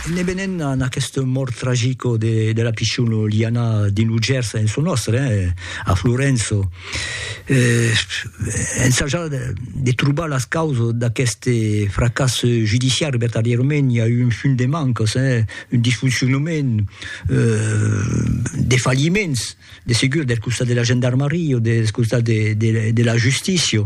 Ne venent a aquesta mòrt tragica de la pichona Liana dins lo Gèrs en çò nòstre, a Florença, ensajar de trobar las causas d'aqueste fracàs judiciari, vertadièrament i a un fum de mancas, un disfoncionament, de falliments. de segur del costat de la gendarmaria o del costat de, de, de la justícia,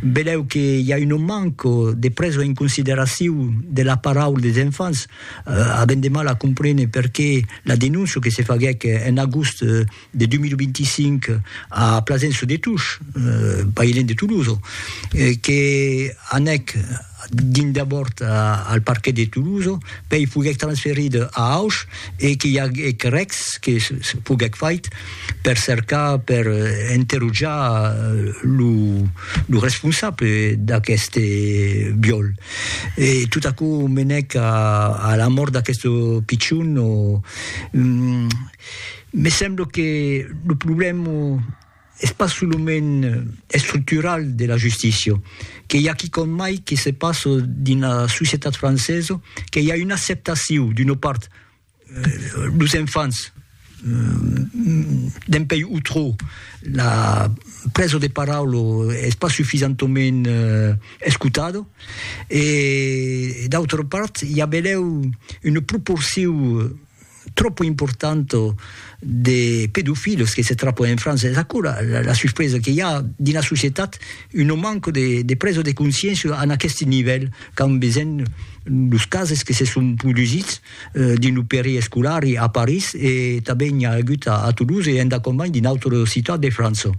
velèu que i a un manco de presa en consideracion de la paraula des enfants, eh, avèm de mal a comprene perqué la denóncia que se faguèc en agost de 2025 a Plasenço de Tush, eh, pas ilèn de Tolosa, eh, que anèc dins d'abòrd al parquet de Toulouse, pèi foguèc transferit a Auch e qu'i aguèc rèc que foguèc fait per cercar, per enterotjar lo responsable d'aqueste viòl. E tot aquò menèc a la mòrt d'aqueste pichon. Me sembla que lo problèma. Es pas solament estructural de la justícia, que i a quicòm mai que se passa dins la societat francesa, que i a una acceptacion d'una part los enfants dempuèi o trò la presa de paraula es pas sufisentament escotada e d'autra part i a benlèu una proporcion tropo importanto de pedofilos que se trapo en França, es aquò la la suspresa que i a dins la societat un non manco de de presa de consciéncia en aqueste nivèl qu'an besenh los cases que se son produsits dins lo peri escolari a París e tanben i a agut a Toulouse e endacòm mai dins d'autres ciutats de França.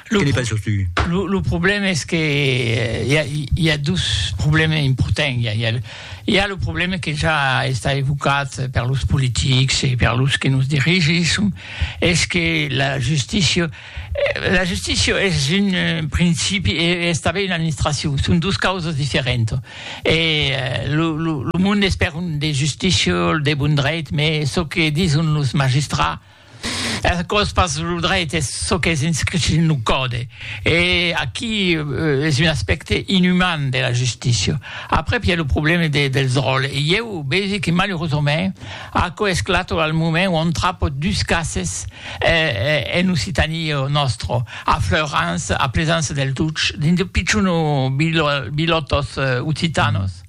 Lo, que penses tu? Lo, lo problème es que hi a, hi a dos problèmes importants. Hi a, hi a, hi a lo problème que ja està evocat per los politics e per los que nos dirigisson, es que la justícia, la justícia es un principi e es tanben una administracion, son dos causas diferentas. E lo, lo, lo monde es per un de justícia, de bon dreit, mes çò que dison los magistrats, Es aquò's pas lo dreit, es çò qu'es inscrit dins lo còde. E aquí es un aspècte inüman de la justícia. Aprèp i a lo problème de dels ròls e ieu vegi que malurosament aquò esclata al moment ont trapo dus cases en Occitanie nòstra, a Fleurans, a Plesança del Tuch, dins de pichons bilòtos occitanos,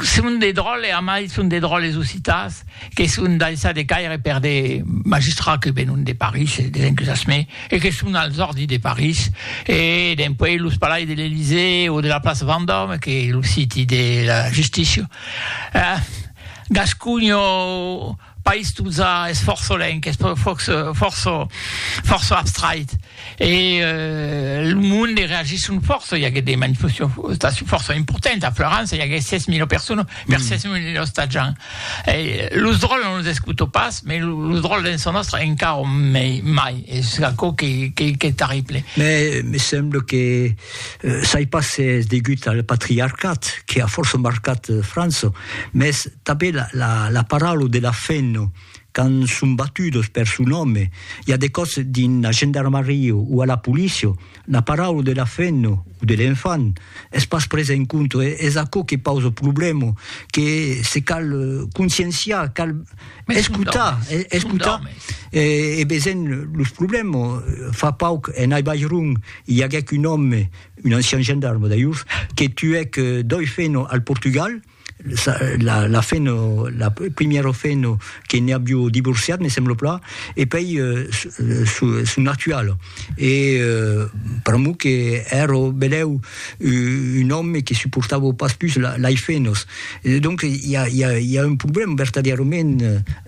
Son de dròlles, a mai son de dròlles occitans que son daissats de caire per de magistrats que venon de París e des encusasments e que son als òrdis de París e dempuèi los palais de l'Elysée o de la plaça Vendòme que lo siti de la justícia. Gasconho. País Tuza es fòrça lenc, es fòrça fòrça abstrait e lo monde reagisson fòrça, i aguèt de manifestacions fòrça importantes a Florança, i aguèt 6.000 personas per 6.000 ostatjants. Los dròlles non los escuto pas, mas los dròlles dens çò nòstre encara mai, es aquò qu'es terrible. Me semble que Sai pas se es degut al patriarcat que a fòrça marcat França, mès tanben la paraula de la femna, quand son batudos per son òme, i a de còps dins la gendarmaria o a la polícia, la paraula de la femna o de l'enfant es pas presa en compte. Es aquò que pausa problèma, que se cal conscienciar, cal escotar, escotar e veser los problèmas. Fa pauc en Ai Bairun I aguèc un òme, un ancian gendarme d'ailhors, que tuèc doi feno al Portugal, la feno, la primièra feno que ne avió divorciat, me sembla plan, e pei son actual. E pr'amor que èra benèu un òme que suportava pas pus lei fenos. Donc i a un problèma vertadièrament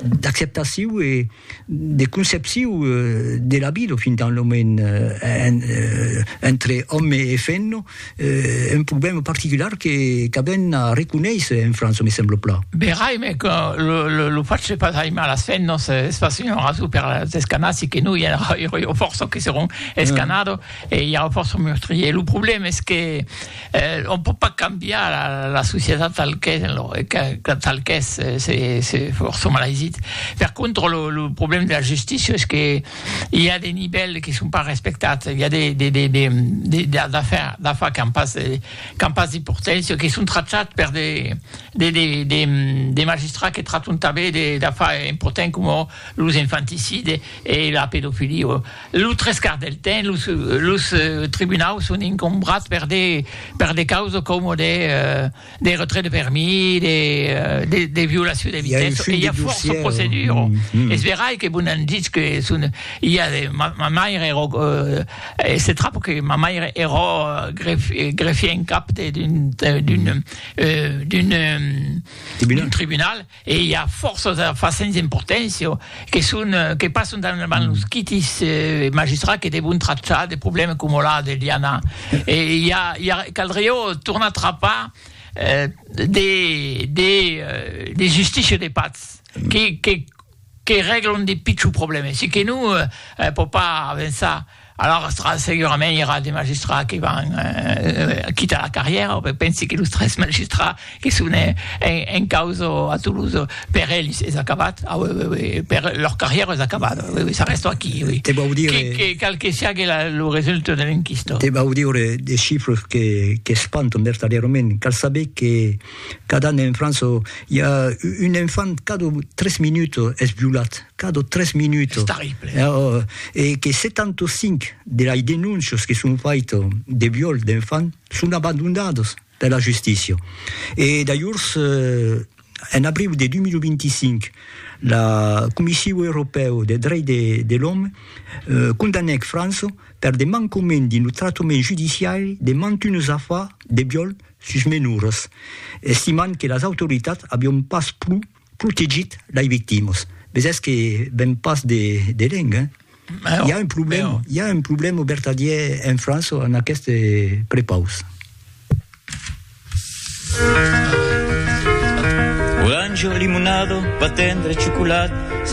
d'acceptacion e. de concepcion de la vida fin tant lo moment entre òme e femna, un problèma particular que qu'avèm a reconéisser en França, me sembla plan. Verai, me que lo fach de pas aimar las femnas es pas una rason per las escanar, si que no i aurà fòrça que seràn escanado e i aurà fòrça meurtriers. Lo problèma es que Eh, on pòt pas cambiar la, la societat tal qu'es, lo, que, tal qu'es, se, se fòrça mal aisit. Per contra, lo, lo problèma de la justícia es que i a de nivèls que son pas respectats, i a de, de, de, de, de, de d'afar, d'afar qu'an pas, qu'an pas d'importància, que son tratats per de, de, de, de, de magistrats que traton tanben de, d'afar importants coma los infanticides e la pedofilia. Lo tres quarts del temps, los los tribunaus son incombrats per de per de causas coma de de retrait de permis, de de de violacion de vitessa, e i a fòrça proceduras. Es verai que vos n'an ditz que son i a de ma ma maire era e se trap que ma maire era gref greffier en cap de d'un d'un d'un d'un tribunal. E i a fòrça d'afars sens importància que son que passan davant los quitis magistrats que devon trachar de problèmes coma la de Liana. E i a i a caldriá tornar trapar de de de justicia de patz que que que règlan de pichons problèmes. Se que non, pòt pas avançar. Alara tra segurament i era de magistrats que van quitar la carrièra, o pensi que los tres magistrats que son en causa a Toulouse, per ells es acabat, per lor carrièra es acabat, s'arrèsto aquí, qual que siague lo resultat de l'enquista. Te vau dire de chifres qu'espantan vertadièrament, cal saber que cada an en França i a un enfant cada tres minuts es violat, 4 o 3 minutos. E que 75 de las denuncias que son faitas de viol d'enfants son abandonadas per la justícia. E dajors, en abriu de 2025, la Comissiu Europèu de Drech de l'Òme condanèc França per de mancament dins lo tractament judiciari de mantunes afars de viol sus menoras, estimant que las autoritats avián pas plu Cul que git lai victimas. Vesètz que ven pas de de lenc, hein? Mèu, I'a un problèm, mèu. i'a un problèm au vertadièr en França en aqueste prepaus. Oranjo, limonado, pa tendre, chocolat, se